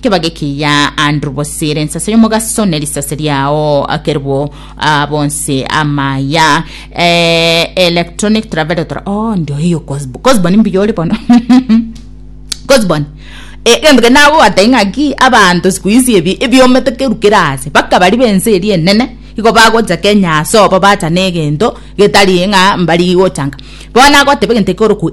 Kebage kiya Andrew Bosire ensase y'omogaso ne risase riao akerwo ah, bonse amaya eh, electronic travelotor oh ndio hiyo Cosbo Cosbo ni mbuya ore bono Cosbon Eh, gento ke nabo batai ng'aki abanto siku hizi ebi ebiomete kerukera ase bakabari bense eri enene igo bagocha kenya ase obo bacha negento getari ng'a mbari gochanga bono agoteba egento ekoroku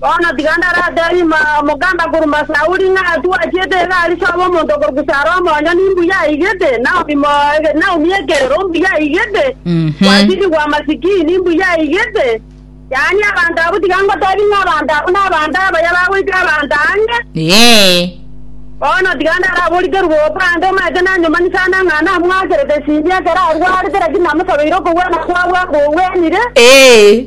Bono tiga ndarateebie ime omoganda korwa Sauli ng'a twachiete egari chi'oba omonto okorokwa Sara omonyene imbuya aigete, Naomi mo- Naomi ekerero mbuya aigete, Mhm. Kwasidi bwa masikini mbuya aigete. Yaani abanto abwo tiga ngoteebie ng'a abanto abwo nabanto abaya bagoika abanto ang'e. Ee. Bono tiga ndaraborikerwe bobe ande omanyete nanyomani sana ng'a namwakerete Simia ekero arwarete, lakini namosabeire okogwena kwabwe akogwenire. Ee.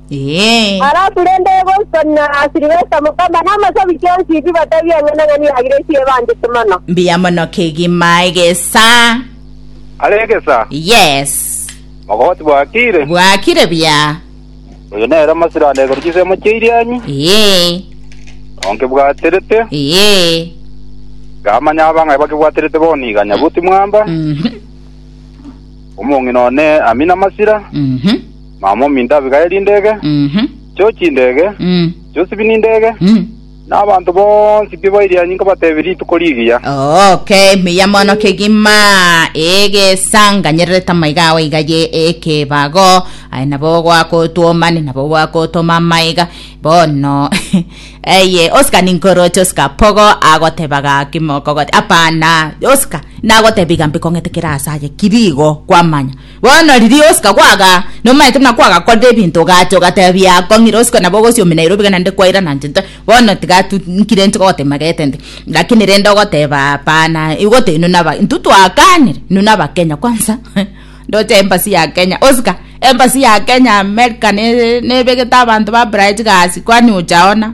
Ee. Halafu rende Boston na Sylvester Mukamba na amasabi chionsi ibi batabia eng'enang'ani ya Grace ebanchete mono. Mbuya mono kegima egesaa. Are egesa. Yes. Mogoti bwakire. Bwakire buya. Oyo nere omosiranda igoro chisemo chia Irianyi. Ee. Nao nkebwaterete. Ee. Nkamanya abang'ai bakebwaterete bono iga Nyabuti Mwamba. Mhm. Omong'ina one Amina Masira. Mhm. Mama mominto abigaye rindege, Mhm. chio chindege, Mm. chio sibi nindege, Mm. na abanto bonsi pi ba erianyi nkobatebi rituko rigiya. Okay, miya mono kegima egesanganyererete amaiga ao iga ye ekebago aye nabo gwakotwoma ni nabo gwakotoma amaiga bono eye osika ninkoroche osika pogo agoteba gaki mokogote apana osika nagotebi gambi kong'etekera ase aye kirigo kwamanya Bono riria ogosika kwaga, nomaete buna kwagakorire ebinto, ogacha ogatebia akong'ire ogosika nabo ogosiomina ere obiga naende kwairana inche inche bono tiga tu nkire inche gogotema gete nde lakini rende ogoteba hapana igo te inwe naba intwe twakanire inwe nabakenya kwanza ndoche embassy ya kenya osika embassy ya kenya america ne nebegete abanto ba bright gasi kwani ocha hona.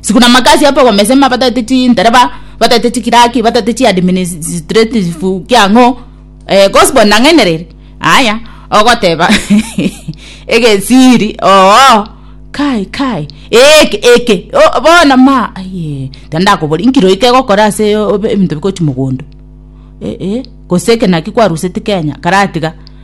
sikuna makasi apa komesema batagete chindereba batagete chikiraki batagete chiadministrative kiang'o eh, gospel nang'ainereire aya ogoteba egesiri oo kai kai eke eke o- bono ma aye tendakobori nkiro ike egokora ase o- obe- ebinto bikochi mogondo eh, eh, gose eke naki kwaruseti kenya karatiga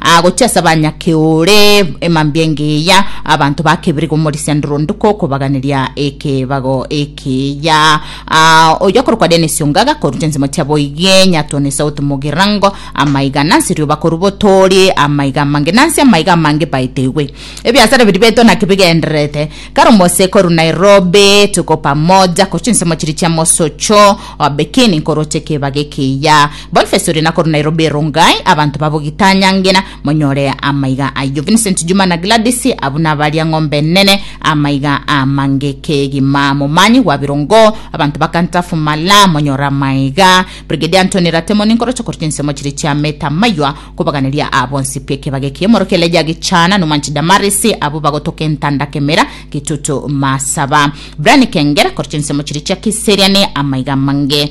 Agochia ase abanyakeore emambia engiya, abanto ba kebere komorisia ndoronduko okobaganeria ekebago ekiya. Ah, oyio akorokwa Dennis Ongaga korwa chinsemo chia Boigie, Nyatoni South Mugirango, amaiga nansi rioba korwa Botori, amaiga amange nansi amaiga amange baetegwe. Ebiasara biria beto naki bigendererete kare omose korwa Nairobi, Tuko Pamoja korwa chinsemo chiria chia Mosocho, Bekini nkoroche ekebago ekiya. Boniface oria nakorwa Nairobi Rongai abanto babo gitanyangena monyore amaiga ayio Vincent Juma na Gladys abwo nabaria ng'ombe enene amaiga amange kegima momanyi gwa birongo abanto bakantafumala monyore amaiga Brigadier Anthony Ratemo ninkoroche korwa chinsemo chiria chia Meta Maywa kobaganeria aa bonsi bw'ekebaga ekiya omoro Keleja Gichana Numanchi Damaris abwo bagotoka entanda kemera gitutu masaba Brian Kengera korwa chinsemo chiria chia Kiserian amaiga amange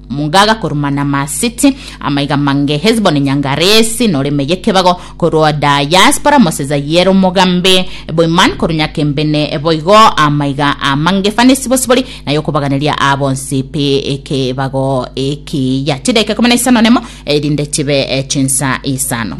Mungaga korwa Manamasiti, amaiga mange Hesiboni nyangaresi, noreme y'ekebago korwa Diaspora moseza y'ere omogambi, Boiman korwa nyakembene boigo amaiga amange Fanesi bosibori na y'okobaganeria aa bonsi pi ekebago ekiya. Chidaika ikomi na isano nemo erinde chibe chinsa isano.